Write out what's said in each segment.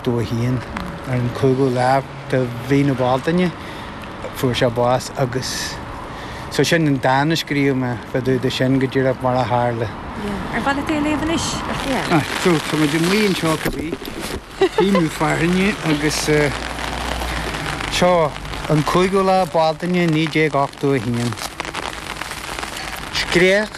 201. Ar an 5ú lá de mhí na Bealtaine fuair sé bás agus so sin an dán a scríobh mé fá dtaobh de sin go díreach mar a tharla. Yeah. Ar mhaith leat é a léamh anois? Yeah. Ah, so tá muid amuigh anseo go dtí Feidhmiú Fearthainne agus eh, seo an 5ú lá Bealtaine 1981. Scréach.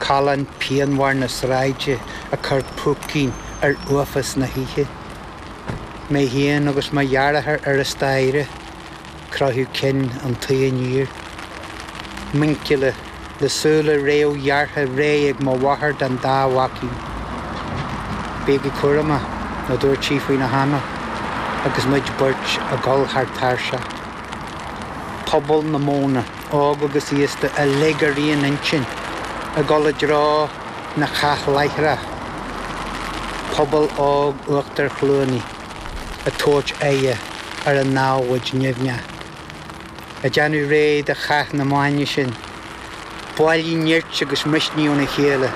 Callán pianmhar na sráide ag cur púicín ar uafás na hoíche. Mé féin agus mo dheartháir ar an staighre, croitheadh cinn an tuí aniar. Muinchille, le súile réamhghearrtha réidh ag mo mháthair don dá mhaicín. Bígí cúramach, a dúirt sí faoina hanáil agus muid beirt ag dul thar tairseach. Pobal na Móna. óg agus aosta uilig ar aon intinn ag dul i dtreo na cathláithreach, pobal óg Uachtar Chluanaí ag tabhairt aghaidhe ar an namhaid nimhneach, ag déanamh réidh do chath na maidne sin. Bailiú nirt agus misnigh óna chéile.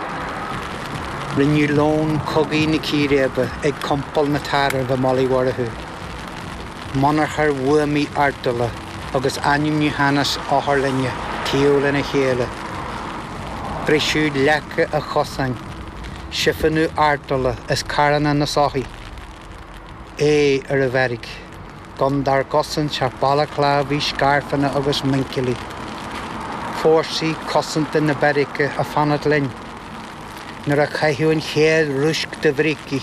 Rinneadh lón cogaidh na círéibe ag compal na dtarbh i mBaile Uí Mhurchú. monarcha bhuamaí artola agus ainmniúchánhas otharlainne taobh lena chéile, briseadh leaca an chosáin, siofónú artola as carranna na soithí, aghaidh ar an bheairic, gan dár gcosaint ach balaclávaí, scairfeanna agus muinchillí, fórsaí cosanta na beairice ag fanacht linn nuair a caitheadh an chéad rúisc de bhrící,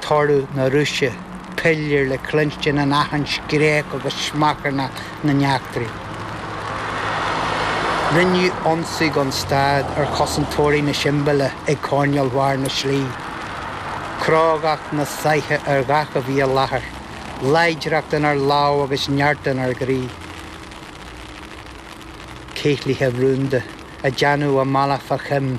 toradh na rúisce, pilléir le cluinstin in achan scréach agus smeacharnach na n-eachtraí. Rinneadh ionsaí gan stad ar chosantóirí na siombaile ag coirnéil bharr na slí, crógacht na saithe ar gach a bhí i láthair, láidreacht inár lámh agus neart inár gcroí. Céilithe rúnda ag déanamh a mbealach fá choim,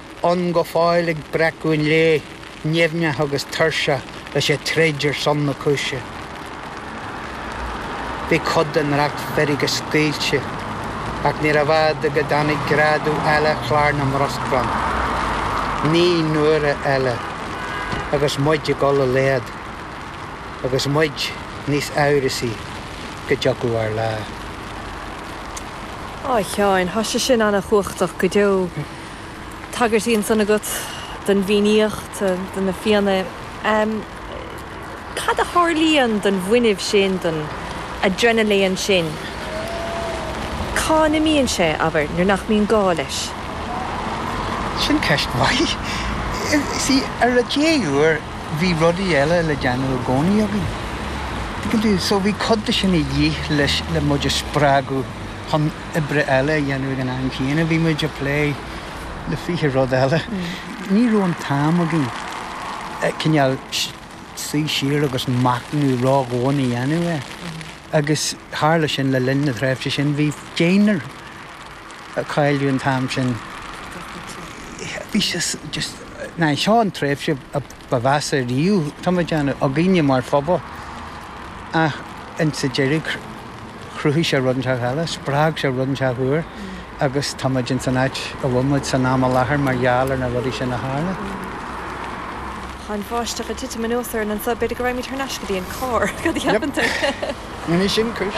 ann go fóill ag breacadh an lae, nimhneach agus tuirseach leis an troid ar son na cúise. Bhí cuid den racht feirge scaoilte, ach níorbh fhada go dtáinig greadadh eile chlár na mbruscrán. Naoi n-uaire eile, agus muid ag dul i laghad, agus muid níos amhrasaí go dtiocfadh ár lá. Ó a Sheáin, thá sé sin ana-chumhachtach go deo. tagairtí ansan agat don bhFiannaíocht, do na Fianna. Cad a tharlaíonn don bhfuinneamh sin, don adrenaléan sin? Cá n-imíonn sé, abair, nuair nach mbíonn gá leis? Sin ceist mhaith. Sea, ar an dea-uair bhí rudaí eile le déanamh i gcónaí againn. Tuigeann tú? So bhí cuid de sin a dhíth le muid a spreagadh. chun oibre eile a dhéanamh ag an am céanna. Bhí muid ag plé le fiche rud eile. Ní raibh an t-am againn cineál suí siar agus machnamh ró-dhomhain a dhéanamh air. Agus tharla sin le linn na tréimhse sin, bhí deontas á chailleadh an t-am sin, bhí sé just, nó seo an tréimhse ba mheasa riamh, dá mbeadh againne mar phobal ach insa deireadh, chruthaigh sé rud inteach eile, spreag sé rud inteach úr agus táimid ins an áit a bhfuil muid san am i láthair mar gheall ar na rudaí sin a tharla. Tá an bháisteach ag titim anuas orainn anso, b'fhéidir go raghaimid thar n-ais go dtí an carr, cad a cheapann tú? Yep, déanfaidh sin cúis.